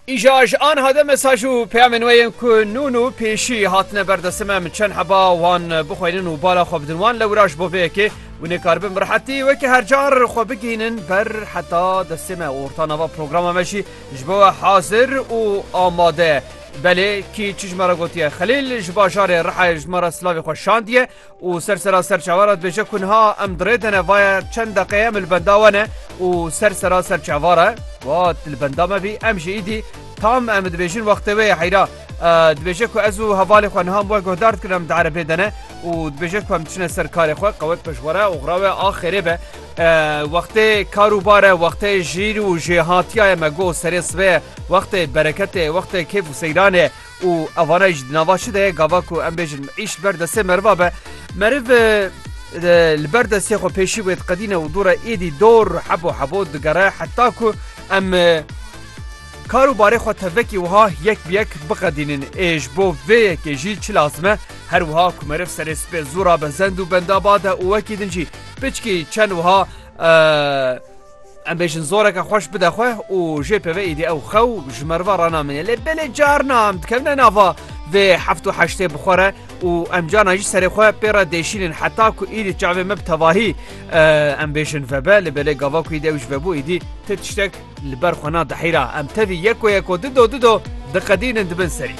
Îja ji anha de mesaj û peyamên we yên ku nûn û pêşî hatine ber destê me min çend heba wan bixweynin û bala xwe bidin wan lewra ji bo vê yekê hûn ê karibin bi rehetî wekî her car xwe bigihînin ber heta destê me û orta nava programa me jî ji bo we hazir û amade ye. Belê kî çi ji me re gotiye Xelîl ji bajarê Rihayê ji me re silavê xwe şandiye û ser sera serçava re dibêje ku niha em dirê dene vaye çend deqeyê em li benda we ne û ser sera serçava re got li benda me bî em jî îdî tam em dibêjin wextê wê ye heyra dibêje ku ez û hevalê xwe niha we guhdar dikin em di erebê dene û dibêje ku em diçine ser karê xwe qewet pişwere oxra we axêrê be wextê kar û bare wextê jîr û jêhatiyaye me got serê sibê wextê bereketê wextê kêf û seyranê Û evana jî di nava çi de ye gava ku em bêjin îş li ber destê meriva be meriv li ber destê xwe pêşî wê diqedîne û dû re êdî dor hebo hebo digere heta ku em kar û barê xwe tevekî wiha yek bi yek biqedînin ê ji bo vê yekê jî çi lazim e her wiha ku meriv serê spê zû ra bezend û benda bade û wekî din jî piçkî çend wiha Em bêjin zoreke xweş bide xwe û jê peve îdî ew xew ji merva ranamîne. Lê belê carna em dikevine nava vê heft û heştê bi xwe re û em carna jî serê xwe pê re dêşînin heta ku îdî çavê me bi tevahî em bêjin vebe lê belê gava ku îdî ew ji vebû îdî ti tiştek li ber xwe nadihîra. Em tevî yeko yeko dido dido diqedînin di bin serî.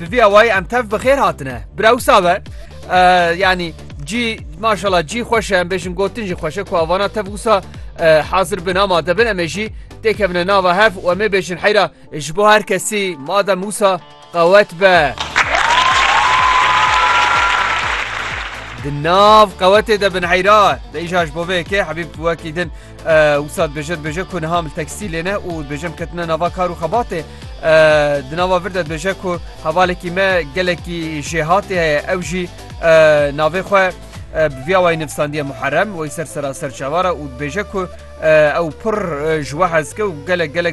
Bi vî awayî em tev bi xêr hatine. Birewsa be yanî cî maşala cî xweş e em bêjin gotin jî xweş e ku avana tev wisa hazir bin ama debin em ê jî têkevine nava hev û em ê bêjin heyra ji bo her kesî madem wisa qewet be. Di nav qewetê de bin heyra Deyja ji bo vê yekê hebîb wekî din Wisa dibêje dibêje ku niha li tekstîlê ne û dibêje em ketine nava kar û xebatê. Di nava vir de dibêje ku hevalekî me gelekî jêhatê heye ew jî navê xwe bi vîya wayî nivîsandiye Muherrem wey ser seraser çavar e û dibêje ku ew pir ji we hezke û gelek gelek